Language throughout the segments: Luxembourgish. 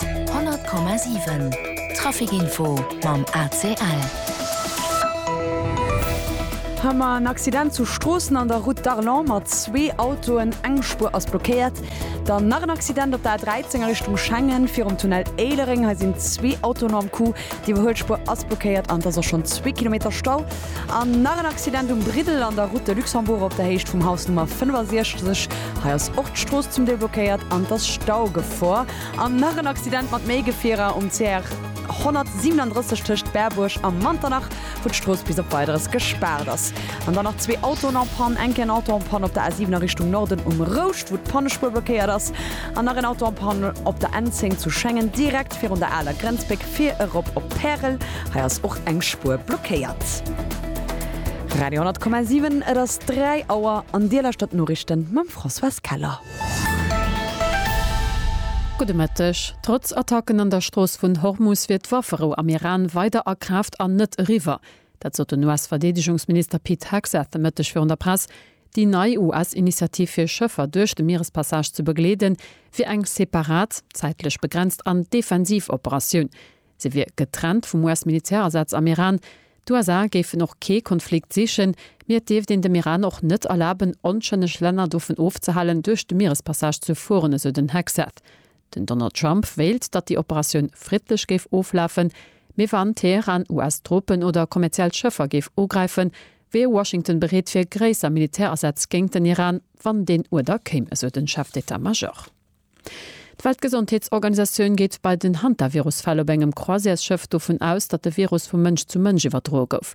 100,7 Trafic Info mam ACL. Hummer, En Accident zu Stroossen an der Route d'Arlon mat zwee Autoen, eng Spuer ass blockéiert. Dann nach en Accident op der A13 a Richtung Schengen, virum Tunnel Éilereng. Hei sinn zwee Autoen am Coup. Déi Iwwerhuelspuer ass blockéiert an et ass och schonn zwee Kilometer Stau. An nach en Accident um Briddel an der Route de Luxembourg op der Héicht vum Haus Nummer 65. Hei ass och d'Strooss zum Deel blockéiert an et ass Staugefor. An nach en Accident mat méi Gefierer um CR 137 tëscht Berbuerg a Manternach, wou d'Strooss bis op Weideres gespaart ass. An dann nach zwee Autoen en Panne. Enke en Auto en Panne op der A7 a Richtung Norden um Rouscht, wou d'Pannespuer blockéiert ass. An nach en Auto en Panne op der N10 zu Schengen, direkt. Just virun der aler Grenzbréck fir erop op Pärel. Hei ass och eng Spuer blockéiert. Radio 10,7 Et ass 3 Auer an Dir lauschtert d'Noriichten mam Françoise Keller. Gudde Mëtteg. Trotz Attacken an der Strooss vun Hormus wier d'Wafferou am Iran weider a Kraaft an net eriwwer. Dat sot den US-Verdeedegungsminister Pete Hegseth de Mëtteg virun der Press. Déi nei US-Initiativ fir Schëffer duerch de Mierespassage ze begleeden, wier eng separat, zäitlech begrenzt an defensiv Operatioun. Se wier getrennt vum US-Militärasaz am Iran. D'USA géifen och kee Konflikt sichen, mee et dierft een dem Iran och net erlaben, onschëlleg Länner dovun ofzehalen, duerch de Mierespassage ze fueren, esou den Hegseth. Den Donald Trump wéilt, datt déi Operatioun friddlech géif oflafen, mee wann Teheran US-Truppen oder kommerziell Schëffer géif ugräifen, wier Washington bereet fir gréisser Militärasätz géint den Iran, wann deen Uerder kéim, esou den Chef d'Etat Major. D'Weltgesondheetsorganisatioun geet bei den Hantavirus-Fäll op engem Croisièresschëff dovun aus, datt de Virus vu Mënsch zu Mënsch iwwerdroe gouf.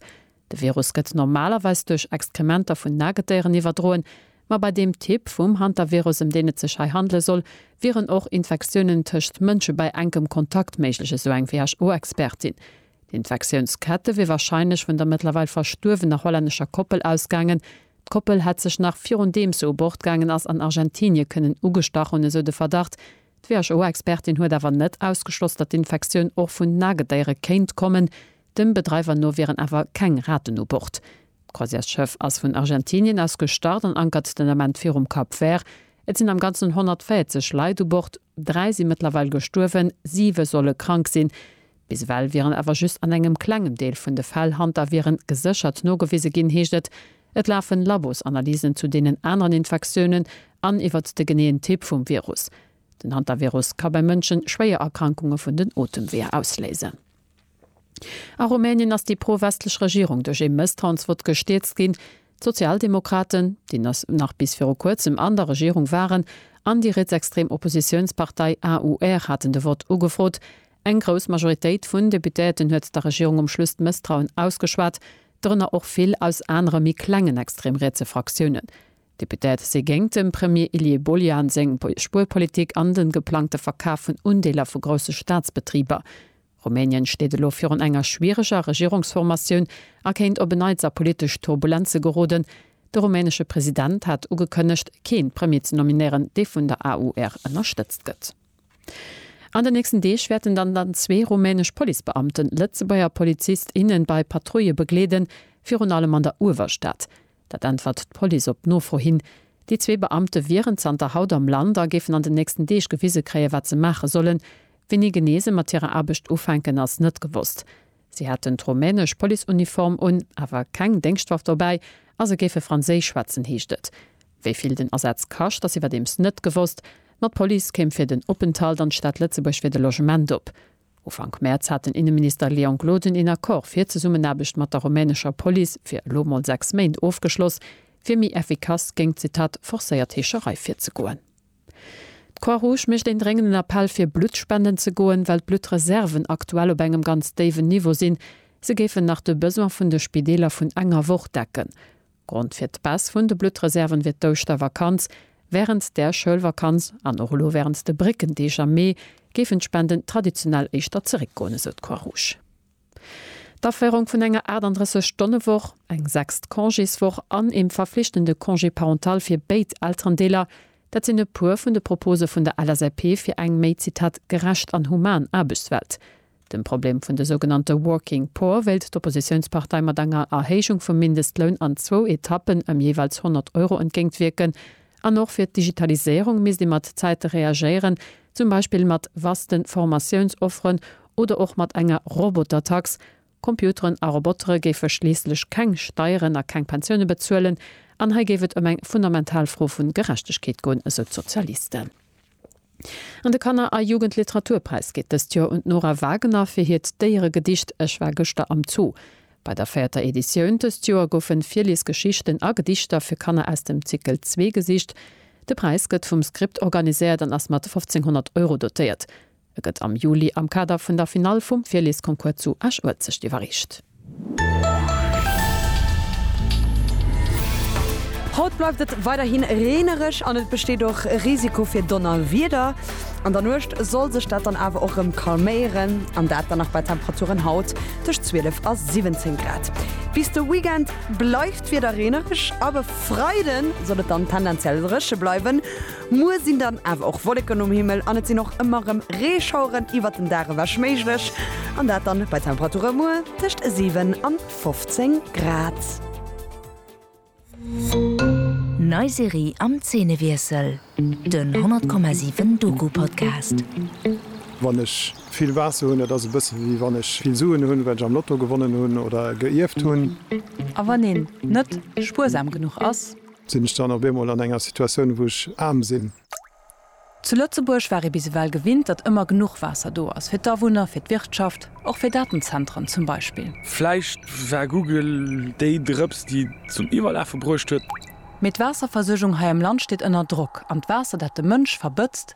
De Virus gëtt normalerweis duerch Exkrementer vun Nagetieren iwwerdroen, ma bei deem Typ vum Hantavirus, ëm deen et sech hei handele soll, wieren och Infektiounen tëscht Mënsche bei enkem Kontakt méiglech, esou eng WHO-Expertin. D'Infektiounskette wier warscheinlech vun der mëttlerweil verstuerwener hollännescher Koppel ausgaangen. D'Koppel hätt sech nach virundeem se u Bord gaangen ass, an Argentinie kënnen ugestach hunn, esou de Verdacht. D'WHO-Expertin huet awer net ausgeschloss, datt d'Infektioun och vun Nagedéiere kéint kommen, Dem Bedreiwer no wieren awer keng Raten u Bord. D'Croisièresschëff ass vun Argentinien aus gestart an ankert den Ament virum Cap Vert. Et sinn am Ganzen 140 Leit u Bord, dräi si mëttlerweil gestuerwen, siwe solle krank sinn. Bis ewell wieren awer just an engem klengem Deel vun de Fäll Hantaviren geséchert nogewise ginn, heescht et. Et lafen Labosanalysen zu deenen aneren Infektiounen an iwwert de geneeën Typ vum Virus. Den Hantavirus ka bei Mënschen schwéier Erkrankunge vun den Otemweeër ausléisen. A Rumänien ass déi pro-westlech Regierung duerch ee Mësstrauensvott gestierzt ginn. D'Sozialdemokraten, déi nach bis viru kuerzem an der Regierung waren, an déi rietsextrem Oppositiounspartei AUR haten de Vott ugefrot. Eng grouss Majoritéit vun Deputéierten huet der Regierung um Schluss d'Mësstrauen ausgeschwat, dorënner och vill aus anere méi klengen extrem-rietse Fraktiounen. D'Députéierte si géingt dem Premier Ilie Bolian seng Spuerpolitik an de geplangte Verkaf vun Undeeler vu grousse Staatsbetriber. Rumänien steet elo virun enger schwiereger Regierungsformatioun a kéint op en Neits a politesch Turbulenze geroden. De rumänesche President hat ugekënnegt, keen Premier ze nominéieren, dee vun der AUR ënnerstëtzt gëtt. An den nächsten Deeg wäerten dann dann zwee rumänesch Policebeamten Lëtzebuerger Polizist, innen bei Patrouille begleeden, virun allem an der Uewerstad. Dat äntwert d'Police op Nofro hin. Déi zwee Beamte wieren zanter haut am Land a géifen an den nächsten Deeg gewise kréien, wat se maache sollen. Wéini genee se mat hirer Aarbecht ufänken, ass net gewosst. Si hätten d'rumänesch Policeuniform un, awer keng Déngschtwaff dobäi a se géife franséisch schwätzen, heescht et. Wéi vill den Asaz kascht, ass iwwerdeems net gewosst. Mat Police kéim fir den Openthalt an d'Stad Lëtzebuerg fir de Logement op. Ufank Mäerz hat den Inneminister Leon Gloden een Accord fir Zesummenaarbecht mat der rumänescher Police fir elo mol 6 Méint ofgeschloss, fir méi effikass géingt, Zitat, forcéiert Heescherei virzegoen. D'Croix-Rouge mécht een dréngenden Appell fir Blutt spenden ze goen, well d'Bluttreserven aktuell op engem ganz déiwen Niveau sinn. Se géifen nach de Besoin vun de Spideeler vun enger Woch decken. Grond fir d'Baisse vun de Bluttreserven wier d'Ouschtervakanz. Wärend der Schoulvakanz an och elo wärend de Bréckendeeg am Mee géifen d'Spenden traditionell éischter zeréckgoen, esou d'Croix-Rouge. D'Aféierung vun enger 38 Stonne Woch, eng sechst Congéswoch an eem verflichtende Congé parental fir béid Elterendeeler, dat sinn e puer vun de Propose vun der LSAP fir eng méi, Zitat, gerecht an human Aarbechtswelt. Dem Problem vun de sougenannte Working Poor wéilt d'Oppositiounspartei mat enger Erhéijung vum Mindestloun an zwou Etappen ëm jeeweils 100 Euro entgéint wierken. An och fir d'Digitaliséierung misst ee mat Zäite reagéieren, zum Beispill mat vaste Formatiounsofferen oder och mat enger Robotertax. Computeren a Robotere géife schliisslech keng Steieren a keng Pensioune bezuelen. An hei géif et ëm eng fundamental Fro vu Gerechtegkeet goen, esou d'Sozialisten. An de Kanner a Jugendliteraturpräis geet dëst Joer un d'Nora Wagener fir hiert Déieregedicht Ech war gëschter am Zoo. Bei der véierter Editioun dëst Joer goufe Virliesgeschichten a Gedichter fir Kanner aus dem Zickel zwee gesicht. De Präis gëtt vum Script organiséiert an ass mat 1500 Euro dotéiert. E gëtt am Juli am Kader vun der Finall vum Virliesconcours zu Esch-Uelzecht iwwerreecht. Haut bleift et weiderhi reenereg an et besteet och e Risiko fir Donnerwieder. An der Nuecht soll sech dat dann awer och rem calméieren an dat dann nach bei Temperaturen haut tëscht 12 a 17 Grad. Bis de Weekend bleift d'Wieder reenereg, ab e Freide soll et dann tendenziell dréche bleiwen. Muer sinn dann awer och Wolleken um Himmel an et sinn och ëmmer rem Reeschaueren iwwert den Dag ewech méiglech an dat dann bei Temperature muer tëscht 7 an 15 Grad. Nei Serie am Zeenewiessel, den 100,7 Doku-Podcast. Wann ech vill Waasser hunn, dat ass e bësse wéi wann ech vill Suen hunn, well ech am Lotto gewonnen hunn oder geierft hunn. A wann een net spuersam genuch ass? Sinn ech dann op eemol an enger Situatioun, wou ech aarm sinn? Zu Lëtzebuerg war ee bis ewell gewinnt, datt ëmmer genuch Waasser do ass, fir d'Awunner, fir d'Wirtschaft, och fir Datenzentren zum Beispill. Vläicht war Google déi Drëps, déi et zum Iwwerlafe bruecht huet. Mee d'Waasserversuergung hei am Land steet ënner Drock, an d'Waasser, dat de Mënsch verbëtzt,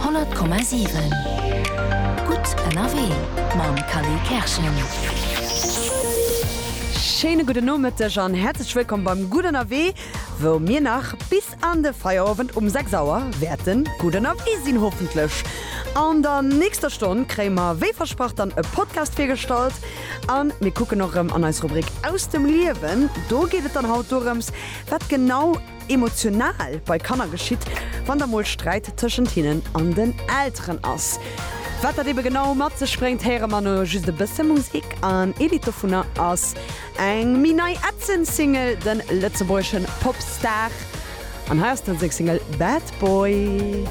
100,7 Gutt ënnerwee mam Kali Kerschen. Schéine gudden Nomëtteg an häerzlech wëllkomm beim Gutt ënnerwee, wou mir nach bis an de Feierowend um 6 Auer wäerte gutt ënnerwee sinn, hoffentlech. An der nächster Stonn kréie mer wéi versprach dann e Podcast virgestallt a mir kucken och erëm an eis Rubrik Aus dem Liewen. Do geet et dann haut dorëms, wat genau. emotional bei Kanner geschitt, wann da mol Sträit tëschent hinnen an den Elteren ass. Wat dat ebe genau mat sech bréngt, héiere mer no just e bësse Musik an ee Lidd dovunner ass eng méi nei ätzend Single, de lëtzebuergeschen Popstar, an hei ass d'en seng Single Bad Boy.